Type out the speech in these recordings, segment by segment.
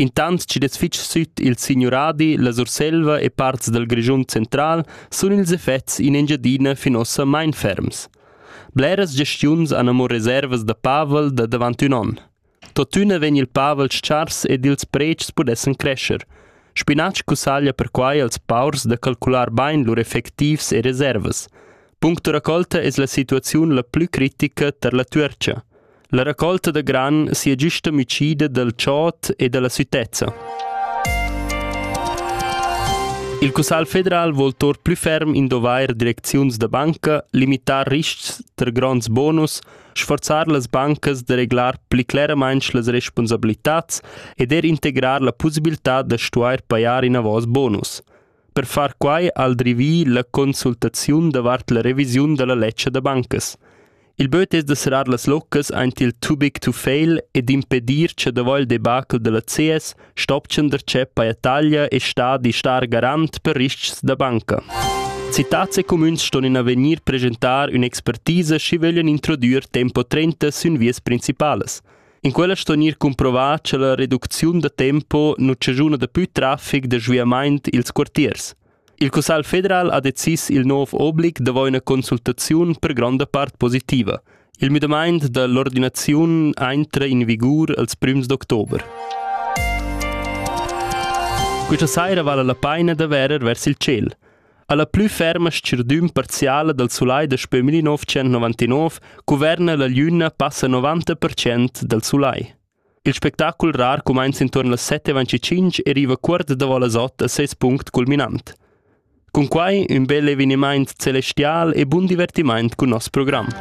Intant chi'd es fich süt il signuradi, la Surselva e parts dal Grischun central sun ils effets in Engiadina fin uossa main ferms. Bleras gestiuns han amo reservas da pavel da davant ün on. Tuottüna vegn il pavel s-chars ed ils predschs pudessan crescer. Spinatsch cussaglia perquai als paurs da calcular bain lur effectivs e reservas. Punct da raccolta es la situaziun la plü critica tar la Tuercha. La raccolta da gran sia giusta amicida dal chod e dalla sütezza. Il Cussal federal vol tor plü ferm indovair direcziuns da banca, limitar riscs ter gronds bonus, sforzar las bancas da reglar pli cleramainch las responsabilitats ed er integrar la pussibiltà da stuair pajar inavos bonus. Per far quai ha el drivì la consultaziun davart la revisiun da la ledscha da bancas. Il böt es da serrar las loccas aint il too big to fail e d'impedir cha davo il debacle da la CS stopchan darcheu paja taglia e stadi star garant per ris-chs da banca. Citats e cumüns ston in avegnir presentar ün'expertisa schi vöglian introdüer tempo 30 sün vias principalas. In quella sto gnir cumprovà cha la reducziun da tempo nu chaschuna da pü trafic da sviamaint i'ls quartiers. Il Cussagl federal ha decis il nouv oblig davo üna consultaziun per gronda part positiva. Il müdamaint da l'ordinaziun aintra in vigur als prüms d'october. Questa saira vala la paina da verer vers il ciel. Alla plü ferma schirdün parziala dal sulai daspö 1999 cuverna la gliüna passa 90% dal sulai. Il spectacul rar cumainza intuorn las 7.25 e riva cuort davo las 8 a seis punct culminant. Cun quai ün bel evenimaint celestial e bun divertimaint cun nos program.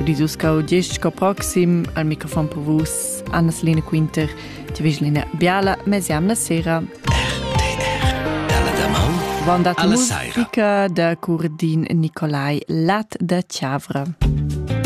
Udis uscau gest sco proxim al microfon per vus Anna-Selina Quinter, ti vislina biala mesi amna sera. Vanda musica da Curdin Nicolai Lat da Chiavra.